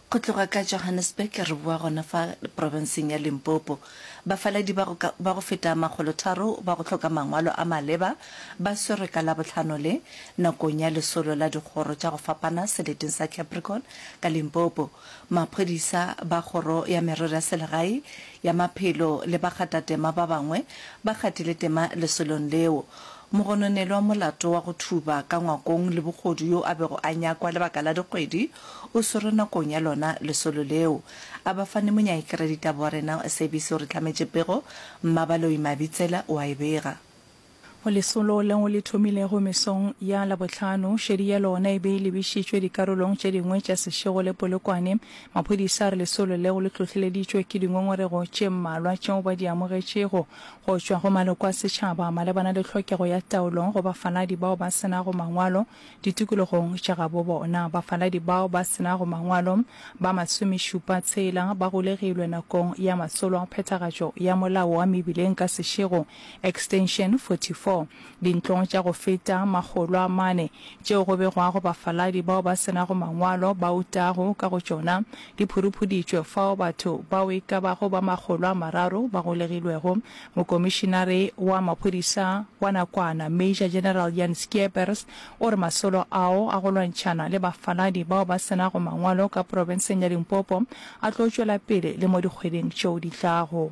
Go tloga ka Johannesburg re boa gona fa profenseng ya Limpopo, bafaladi ba go, ka, ba go feta makgolotharo ba go hloka mangwalo a maleba ba swerwe ka Labohlano le, nakong ya lesolo la dikgoro tša go fapana seleteng sa Capricorn ka Limpopo, maphodisa ba Kgoro ya Merero ya Selegae, ya Maphelo le bakatatema ba bangwe ba gatile tema lesolong leo. Mogononelwa molato wa go thuba ka ngwakong le bogodu yo a bego a nyakwa lebaka la dikgwedi o swerwe nakong ya lona lesolo leo. A ba fane Monyaekeredita Borena Sebisi o re hlametše pego, Mmabaloi Mabitsela o a e bega. Go lesolo leo le thomilego mesong ya Labohlano, šedi ya lona e be e lebišitšwe dikarolong tše dingwe tša Seshego le Polokwane. Maphodisa a re lesolo leo le hlohleleditšwe ke dingongorego tše mmalwa tšeo ba di amogetšego. go tšwa go maloko a setšhaba malebana le tlhokego ya taolo go bafaladi bao ba se nago mangwalo ditikologong tša gabo bona. Bafaladi bao ba se nago mangwalo ba masomešupa tshela ba golegilwe nakong ya masolo a phethagatšo ya molao wa mebileng ka sešego, Extension 44. Dintlong tša go feta makgolo a mane tšeo go begwago bafaladi bao ba se nago mangwalo ba utago ka go tšona, di phuruphudiitšwe fao batho bao e ka bago ba makgolo a mararo ba golegilwego, mokomišinare wa maphodisa wa nakwana Major General Jan Schiepers o re masolo ao a go lwantšhana le bafaladi bao ba se nago mangwalo ka profenseng ya Limpopo a tlo tšwela pele le mo dikgweding tšeo di tlago.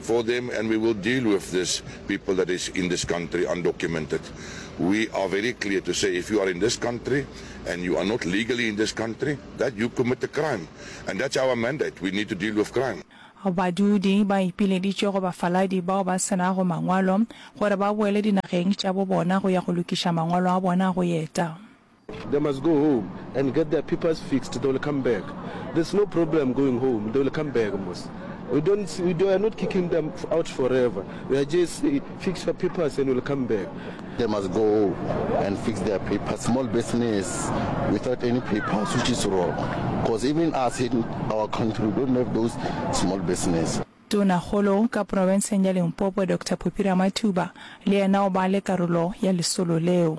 for them and we will deal with this people that is in this country undocumented we are very clear to say if you are in this country and you are not legally in this country that you commit a crime and that's our mandate we need to deal with crime Badudi ba ipileditše go bafaladi bao ba se nago mangwalo gore ba boele dinageng tša bo bona go ya go lokiša mangwalo a bona a go eta. They must go home and get their papers fixed they will come back there's no problem going home they will come back mos we don't see, we are not kicking them out forever we are just say fix your papers and will come back they must go and fix their papers small business without any papers which is wrong because even us in our country we don't have those small business Tonakgolo ka profenseng ya Limpopo Doctor Phuphira Mathuba le yena o ba le karolo ya lesolo leo.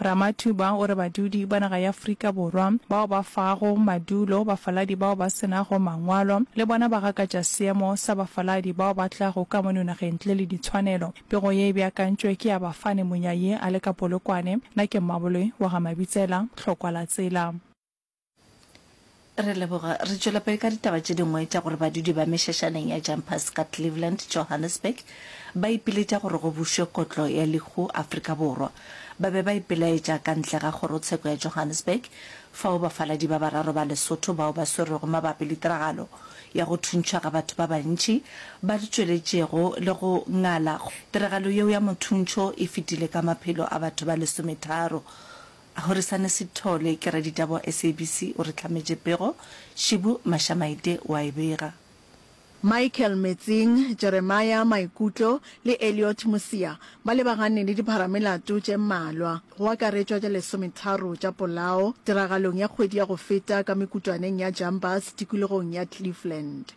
Ramathuba o re badudi ba naga ya Afrika Borwa bao ba fago madulo bafaladi bao ba se nago mangwalo le bona ba gakatša seemo sa bafaladi bao ba tlago ka mono nageng ntle le ditshwanelo. Pego ye e beakantšwe ke ya Bafane Monyayi, Aleka Polokwane, Nake Mmaboloi, Waga Mabitsela, Tlhokwa Latsela. re leboga re tšwela pele ka ditaba tše dingwe tša gore badudi ba mešašaneng ya jumpers ka cleveland johannesburg ba ipiletša gore go bušwe kotlo ya lehu afrika borwa ba be ba ipelaetša ka ntle ga kgorotsheko ya johannesburg fao bafaladi ba bararo ba lesotho bao ba swerwego mabapi le tiragalo ya go thuntšhwa ga batho ba bantši ba di tšweletšego le go ngala tiragalo yeo ya mothuntšho e fetile ka maphelo a batho ba lesometharo Horisane Sithole, ke raditaba wa SABC, o re hlametše pego, Shibu Mashamaite o a e bega. Michael Metsing, Jeremiah Maikutlo le Elliot Mosia ba lebagane le dipharamelato tše mmalwa, go akaretšwa tša lesometharo tša polao, tiragalong ya kgwedi ya go feta ka mekutwaneng ya Jumbas tikologong ya Cleveland.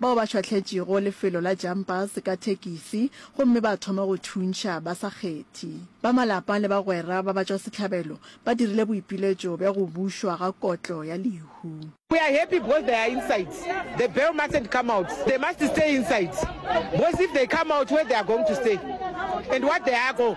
bao ba šwahletšego lefelo la Jumpers ka thekisi gomme ba thoma go thuntšha ba sa kgethi. Ba malapa le bagwera ba batšwasehlabelo ba dirile boipiletšo bja go bušwa ga kotlo ya lehu. We are happy because they are inside, the bell mustn't come out, they must stay inside because if they come out where they are going to stay and what they are go.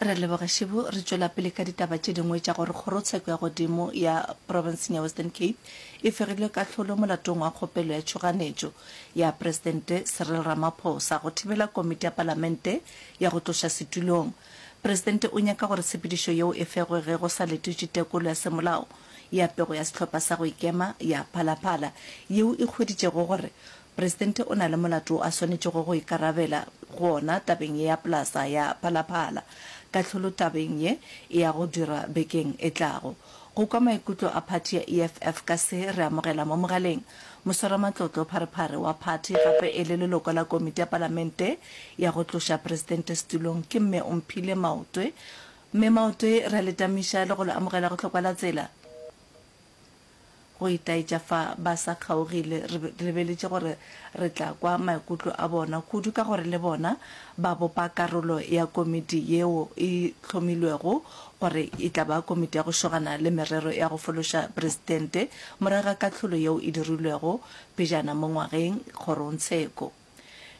re leboge šibo re tšwela pele ka ditaba tše dingwe tša gore kgorotsheko ya godimo ya provinceng ya western cape e fegilwe kahlolo molatong wa kgopelo ya tšhoganetšo ya presidente cyril ramaphosa go thibela komiti ya palamente ya go tloša setulong presidente o nyaka gore tshepedišo yeo e fegwe ge go sa letetše tekolo ya semolao ya pego ya sehlopha sa go ikema ya phalaphala yeo e hweditšego gore Presidente o na le molato wo a swanetšego go ikarabela go ona tabeng ye ya Plaza ya Phalaphala. Kahlolo tabeng ye e ya go dirwa bekeng e tlago. Go kwa maikutlo a phathi ya EFF ka se re amogela mo mogaleng moswaramatlotlo Pharephare wa phathi gape e le leloko la Komiti ya Palamente ya go tloša Presidente setulong ke Mme Omphile Maotwe. Mme Maotwe re a le tamiša le go le amogela go Tlhokwalatsela. Go itaetša fa ba sa kgaogile, re lebeletše gore re tla kwa maikutlo a bona kudu ka gore le bona ba bopa karolo ya komiti yeo e hlomilwego gore e tla ba Komiti ya go Šogana le Merero ya go Fološa Presidente morago ga kahlolo yeo e dirilwego pejana mo ngwageng kgorongtsheko